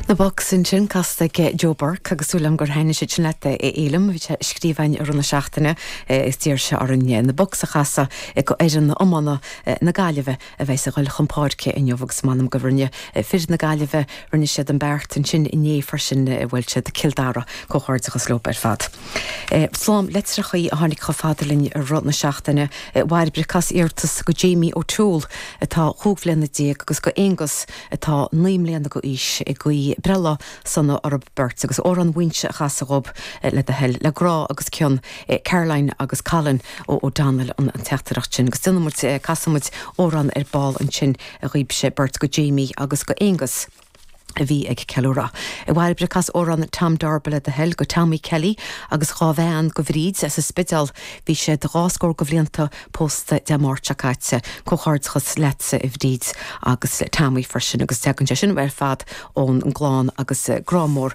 Na Bucks ansin casta ag Joe Burke agus súil agam gur thaitnigh siad sin leat a Fhéilim. Bhí sé ag scríobh againn i rith na seachtaine is d'iarr sé orainn na Bucks a chasadh go fhoireann iomána na Gaillimhe a bheas ag goil chun páirce inniu agus m'anam go rinne fir na Gaillimhe, rinne siad an beart ansin inné freisin a bhuail siad Cill Dara comhghairdeachas leo ar fad. Slám litreacha a tháinig chomh fada linn i rith na seachtaine. A Bhairbre, cas iarratas go Jamie O Toole atá chúig bhliana déag agus go Aonghus atá naoi mbliana go aois ag guí breithlá sona orthu beirt agus Amhrán Mhaínse a chasadh dhóib le do thoil. Le grá agus cion, Caroline agus Colin O'Donnell an teachtaireacht sin agus déanfaidh muid, casfaidh muid amhrán ar ball ansin dhóibsean beirt go Jamie agus go Aonghus. a bhí ag ceiliúradh. A Bhairbre, cas amhrán Tom Darby le do thoil go Tommy Kelly agus dhá bhean go Bhríd as an Spidéal. Bhí siad dhá scór go bhlianta pósta Dé Máirt seo caite. Comhghairdeachas leatsa a Bhríd agus Tommy freisin agus tagann sé sin ar fad ón gclann agus grá mór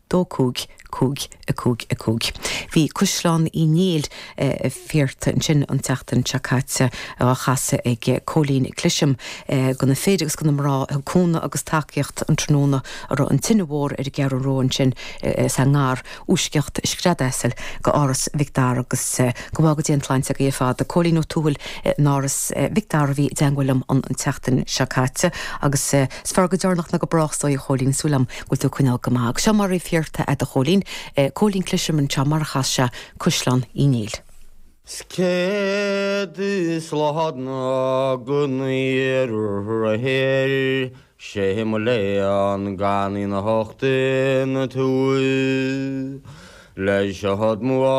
dó cúig, cúig, a cúig, a cúig. Bhí Caisleán Uí Néill iarrtha ansin an tseachtain seo caite á chasadh ag Cóilín Cliseam do na fir agus do na mná a thug cúnamh agus tacaíocht an tráthnóna a raibh an tine mhór ar an gCeathrú Rua ansin sa ngar i bhfoisceacht scread asail go Áras Mhic Dara agus go bhfága Dia an tsláinte acu ar fad Cóilín Ó Tuathail in Áras Mhic Dara a bhí i dteangmháil liom an tseachtain seo caite agus is fearr go deireanach ná go brách is dóigh a Chóilín súil agam bhfuil tú ag coinneál go maith. Agus seo mar a bhí iarrtha agat a Chóilín, Eh, Cóilín Cliseam anseo mar a chas sé Caisleán Uí Néill. 'S céad slán gon oíche aréir, sé mo léan gan í anocht ina tús, leis a thug mo.